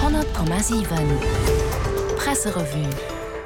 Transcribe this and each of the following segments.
100,7 Presserevue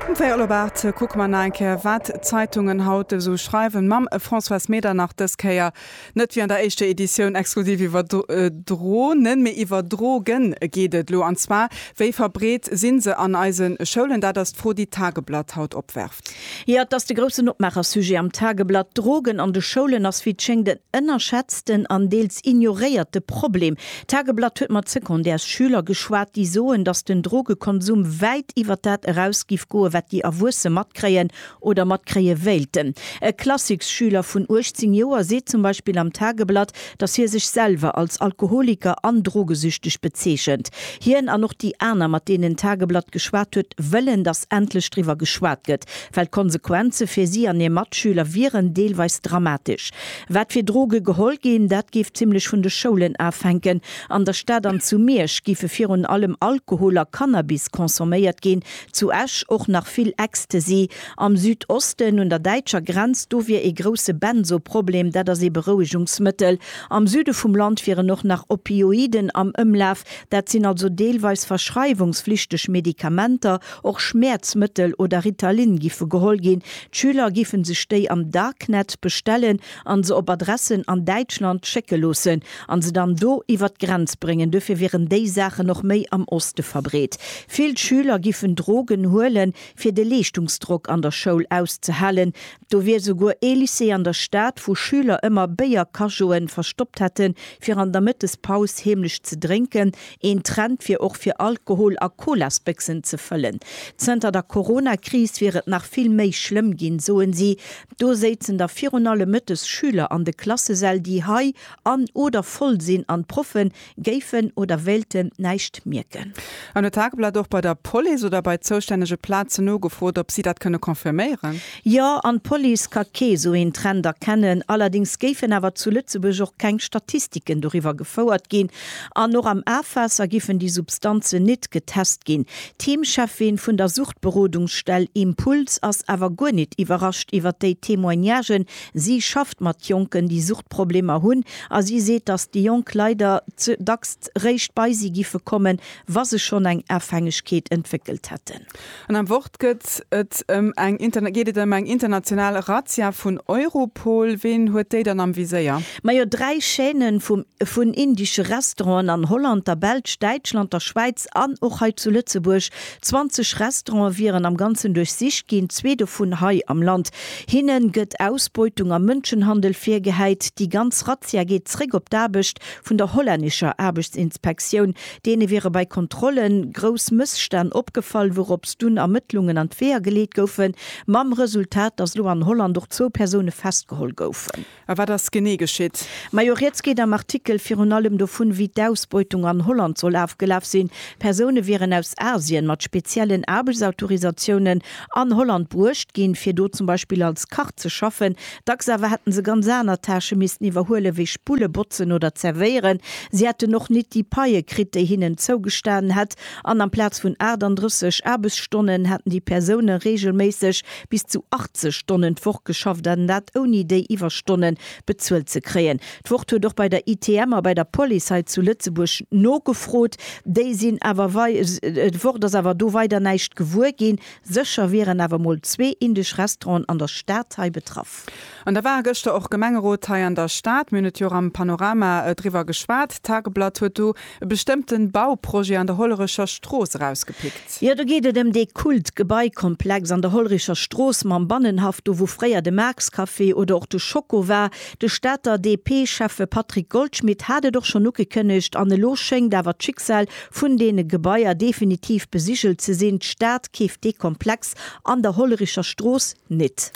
Um véierel op 8 kucke mer nach eng Kéier, wat d'Zeitungen haut esou schreiwen, mam Françoise Medernach. Dës Kéier net wéi an der éischter Editioun exklusiv iwwer Dro nen, mee iwwer Dro gen geet et elo. An zwar, Wéi verbreet si se an eise Schoulen? Dat ass d'Fro, déi d'Tageblatt haut opwerft. Jo, et ass de groussen Opmaacher-Sujet am Tageblatt. Drogen an de Schoulen ass wéi et schéngt en ënnerschätzten an deels ignoréierte Problem. D'Tageblatt huet mat Secondaires-Schüler geschwat, déi soen, datt den Drogekonsum wäit iwwer dat eraus giff goen, wat déi Erwuesse matkréien oder matkréie wéilten. E Klassiksschüler vun 18 Joer seet zum Beispill am Tageblatt, datt hie sech selwer als Alkoholiker an Drogesüchteg bezeechent. Hien an och déi aner, mat deenen d'Tageblatt geschwat huet, wëllen, datt endlech driwwer geschwat gëtt, well d'Konsequenze fir si an hir Matschüler wieren deelweis dramatesch. Wat fir Droge geholl ginn, dat géif zimmlech vun de Schoulen afänken. An der Stad an zu Miersch géife virun allem Alkohol a Cannabis consomméiert ginn, zu Esch och nach vill Ecstasy. Am Südosten, un der däitscher Grenz, do wier ee grousse Benzo-Problem, dat ass ee Berouegungsmëttel. Am Süde vum Land wieren och nach Opioiden am Ëmlaf, dat sinn also deelweis verschreiwungsflichteg Medikamenter. Och Schmäerzmëttel oder Ritalin giffe geholl ginn. D'Schüler giffen sech déi am Darknet bestellen an se op Adressen an Däitschland schécke loossen an se dann do iwwer d'Grenz bréngen. Duerfir wieren déi Saachen och méi am Oste verbreet. Vill Schüler giffen Drogen huelen. fir de Leeschtungsdrock an der Schoul auszehalen, do wier souguer ee Lycée an der Stad, wou Schüler ëmmer Béier-Cajo'e verstoppt hätten, fir an der Mëttespaus heemlech ze drénken, een Trend wier och fir Alkohol a Colasbéchsen ze fëllen. Zënter der Corona-Kris wier et nach vill méi schlëmm ginn, soen si. Do séizen da virun allem mëttes Schüler an de Klassesäll, déi hei an oder voll sinn an d'Proffen, géifen oder wéilten näischt mierken. An huet d'Tageblatt och bei der Police oder bei zoustännege Plazen nogefrot, ob si dat kënne confirméieren? Jo, an d'Police ka kee esou een Trend erkennen. Allerdéngs géifen awer zu Lëtzebuerg och keng Statistiken doriwwer gefouert ginn an och am Afwaasser giffen déi Substanzen nit getest ginn. D'Heemcheffin vun der Suchtberodungsstell Impuls ass awer guer nit iwwerrascht iwwer déi Témoignagen, Si schafft mat Jonken, déi Suchtproblemer hunn a si seet, datt déi Jonk leider dacks réischt bei si giffe kommen, wa se schonn eng Afhängegkeet entwéckelt hätten. An am Wort gëtt et ëm eng geet et ëm eng international Razzia vun Europol. Ween huet déi dann am Viséier? Majo, dräi Chaîne vum vun indesche Restauranten an Holland, der Belsch, Däitschland, der Schwäiz an och hei zu Lëtzebuerg 20 Restaurante wieren am Ganzen duerchsicht ginn, zwee dovun hei am Land. Hinne gëtt Ausbeutung a Mënschenhandel virgehäit. Déi ganz Razzia geet zréck op d'Aarbecht vun der hollännescher Aarbechtsinspektioun. Deene wiere bei Kontrolle grouss Mësstänn opgefall, wourops dunn Ermëttlungen an d'Weeër geleet goufen, mam Resultat, datt elo an Holland och zwou Persoune festgeholl goufen. A wat ass genee geschitt? Majo, rieds geet am Artikel virun allem dovun, wéi d'Ausbeutung an Holland soll afgelaf sinn. Persoune wieren aus Asien mat speziellen Aarbechtsautorisatiounen an Holland bruecht ginn, fir do zum Beispill als Kach ze schaffen. Dacks awer hätten se ganz aner Tâchë missten iwwerhuelen, wéi Spulle, Botzen oder Zerwéieren. Si hätten och nit déi Paie kritt, déi hinnen zougestanen hätt, an amplaz vun 38 Aarbechtsstonnen hätten déi Persoune reegelméisseg Bis zu 80 Stonnen d'Woch geschafft an dat ouni déi Iwwerstonne bezuelt ze kréien. D'Wort huet och bei der ITM a bei der Police hei zu Lëtzebuerg nogefrot. Déi sinn awer wei d'Wort ass awer do weider näischt gewuer ginn. Sécher wieren awer mol zwee indesch Restauranten an der Stad hei betraff. An da war gëschter och Gemengerot hei an der Stad. Mir hunn et jo och am Panorama driwwer geschwat. D'Tageblatt huet do e bestëmmte Bauprojet an der Hollerecher Strooss erausgepickt. Jo, do geet et ëm dee Kult-Gebaikomplex an der Hollerecher Strooss mam Bannenhaff, do wou fréier de Marx-Café oder och de Schoko war. De Stater DP-Schäffe Patrick Goldschmidt hat et och schonn ugekënnegt an elo schéngt awer d'Schicksal vun deene Gebaier definitiv besigelt ze sinn, D'Stad keeft dee Komplex an der Hollerecher Strooss net.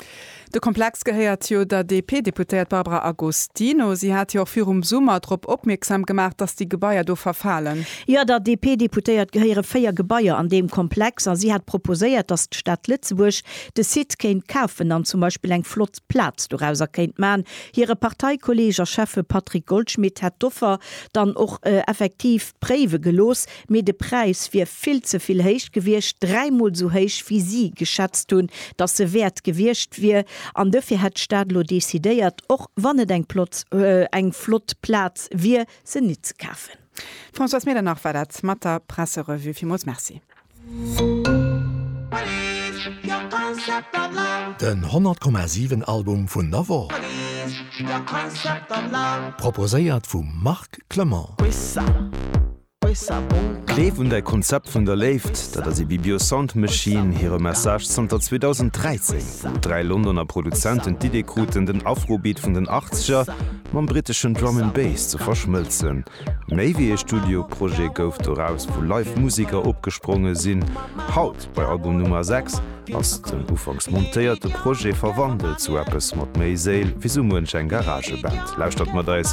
De Komplex gehéiert jo der DP-Deputéiert Barbara Agostino. Si hat jo och virum Summer drop opmierksam gemaach, datt déi Gebaier do verfalen. Jo, der DP-Deputéiert gehéiere véier Gebaier an deem Komplex a si hat proposéiert, datt d'Stad Lëtzebuerg de Site kéint kafen an zum Beispill eng flott Plaz dorauser kéint maachen. Hire Parteikolleeg a Schäffe Patrick Goldschmidt hätt d'Offer dann och effektiv préiwe gelooss. Mee de Präis wier vill ze vill héich gewiescht, dräimol sou héich wéi si geschätzt hunn, datt se wäert gewiescht wier. An dofir hätt d'Stad elo decidéiert, och wann et eng plott, eng flott Plaz wier, se nit ze kafen. D'Françoise Medernach war dat mat der Presserevue. Villmools Merci. Den 100,7 Album vun der Woch, proposéiert vum Marc Clement. Gleef un däi Konzept vun der Léift, dat ass ee Bibio Sound Machine hire Message zanter 2013, wou dräi Londoner Produzenten d'Idee kruten, den Afrobeat vun den Achtzeger mam britteschen Drum and Bass ze verschmëlzen. Méi wéi ee Studioprojet gouf doraus, wou live Museker opgespronge sinn. Haut, bei Album Nummer 6, ass den ufanks montéierte Projet verwandelt zu eppes mat méi Séil wéi sou muench eng Garageband. Lauschtert mat eis!